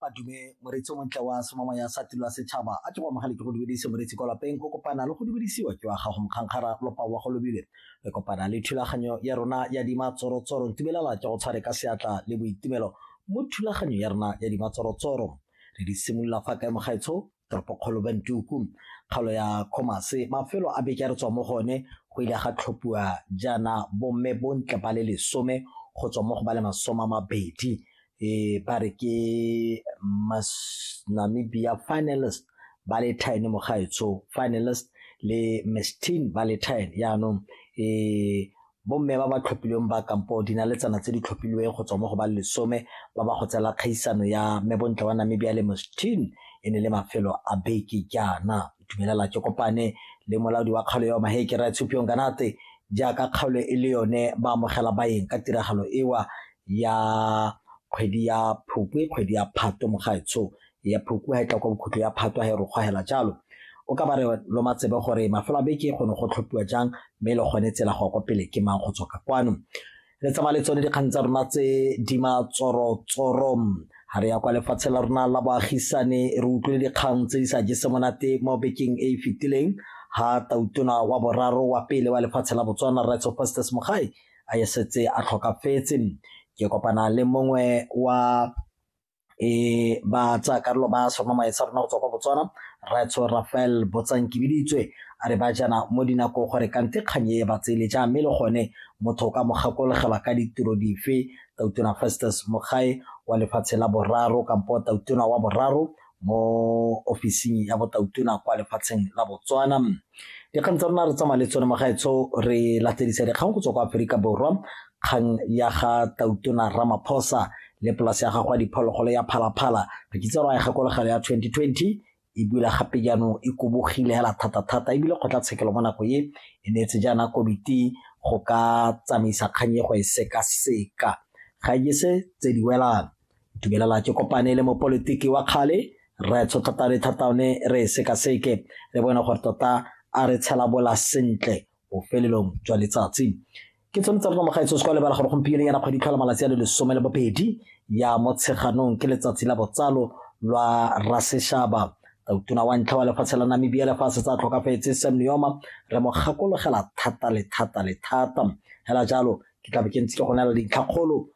madume moreetsi o montle wa somama ya sa tilo ya setšhaba a ke go amogale ke go dumedise moreetsi kwa lapeng go kopana le go dumedisiwa ke wa gago mokgankgara lopa wa go lobile re kopana le thulaganyo ya rona ya dimatsorotsoro ntumelela ke go tshware ka seatla le boitumelo mo thulaganyo ya rona ya dimatsorotsoro re di simolola fa kae mogaetsho toropokgolo Bantuku, kgaolo ya Khomase, mafelo a beke a re tswa mo go one go ile ga tlhophiwa jaana bomme bontle ba le lesome go tswa mo go ba le masome a mabedi um ba re ke Namibia finalist Valentine Mogaetsho finalist le Miss Teen Valentine yaanong um Bomme ba ba tlhophilweng ba kampo dinaletsana tse di tlhophilweng go tswa mo go ba lesome ba ba go tsela kgaisano ya Mme Bontle wa Namibia le Mustin e ne le mafelo a beke jaana. Itumelela ke kopane le molaodi wa kgaolo eo Maheke Raetshupiong Ganate jaaka kgaolo e le yone ba amogela baeng ka tiragalo ewa ya kgwedi ya Phukwi, kgwedi ya Phatwe mogaetsho ya Phukwi ha e tla kwa bokhutlo ya Phatwe ha e rokgwahela jalo. O ka ba re lo matsebe gore mafelo a beke go ne go tlhophiwa jang mme le gone tsela go ya kwa pele ke mang go tswa ka kwano. Re tsamaya le tsone dikgang tsa rona tse di matsorotsoro ga re ya kwa lefatshe la rona la boagisane re utlwile dikgang tse di sa jese monate mo bekeng e e fetileng ha tautona wa boraro wa pele wa lefatshe la botswana rights of festes mogae a e setse a tlhokafetse ke kopana le mongwe wa e ba tsa karolo ba soma maetsa rona go tswa kwa botswana ratso rafael botsankibiditswe a re ba jana mo dinako gore kante kgang e ba tsele ja mme le gone motho o ka mo gakologelwa ka ditiro dife tautona festus mogae wa lefatshe la boraro kampo tautona wa boraro mo ofising ya botautona kwa lefatsheng la botswana dikgang tsa rona re tsamaya le tsone magaetsho re latedisa dikgang go tswa kwa aforika borwa kgang ya ga tautona ramaphosa le polase ya gago ya diphologolo ya phalaphala re kitse ra ya gakologelo ya 2020 e bula gape jaanong e kobogile hela thata-thata ebile kgotlatshekelo mo nako e e neetse jaana komiti go ka tsamaisa kgang e go e sekaseka ga e se tse di welang dumelela ke kopane le mopolitiki wa kgale re tshotlhata le thataone re e sekaseke re bone gore tota a re tshelabola sentle bofelelong jwa letsatsi ke tshwanetse tsa rona mogaetso se kwa lebala gore gompieno yana kgwedi tlhola malatsi a le lesome le bobedi ya motsheganong ke letsatsi la botsalo lwa raseshaba tautona wa ntlha wa lefatshe la namibia lefatshe tsa tlhokafetse sam neoma re mo gakologela thata le thata le thata fela jalo ke tlabe ke ntse ke go nela dintlhakgolo